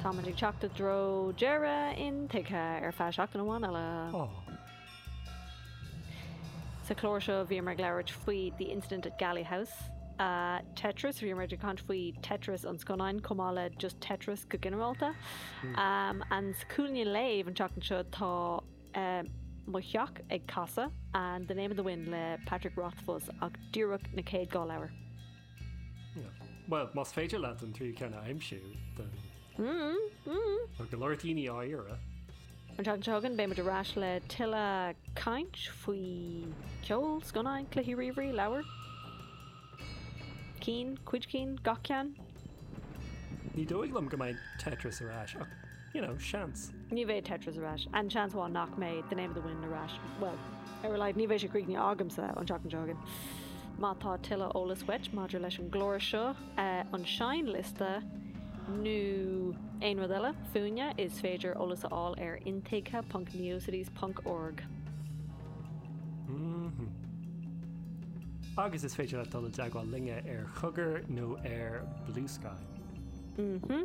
Táimid ag teacht i dtreo deireadh intuigthe ar feadh seachtain amháin eile. Sa chlár seo bhíomar ag labhairt faoi The Incident at Galley House, Tetris, bhíomar ag caint faoi Tetris an scannán chomh maith le just Tetris go ginearálta. And sa chúinne léamh an tseachtain seo tá mo theach ag casadh and The Name of the Wind le Patrick Rothfuss ach díreach na chéad dhá leabhar. Bhuel, más féidir leat an tríú ceann a aimsiú, then. Tá go leor daoine á iarraidh. An tseachtain seo chugainn, beimid ar ais le tuilleadh caint faoi ceol, scannáin, cluichí ríomhairí, leabhair. Cinn, cuid cinn, gach ceann. Ní dóigh liom go mbeidh Tetris ar ais, ach You know, seans. Ní bheidh Tetris ar ais. An-seans ann nach mbeidh The Name of the Wind ar ais. Bhuel, ar a laghad ní bheidh sé críochnaithe agamsa an tseachtain seo chugainn. Má tá tuilleadh eolais uait maidir leis an gclár seo, an seinnliosta, nó aon rud eile fúinne, is féidir eolas a fháil ar intuigthe.neocities.org. Mh-mh. Agus is féidir leat dul i dteagmháil linne ar Chugger nó ar Bluesky. Mh-mh.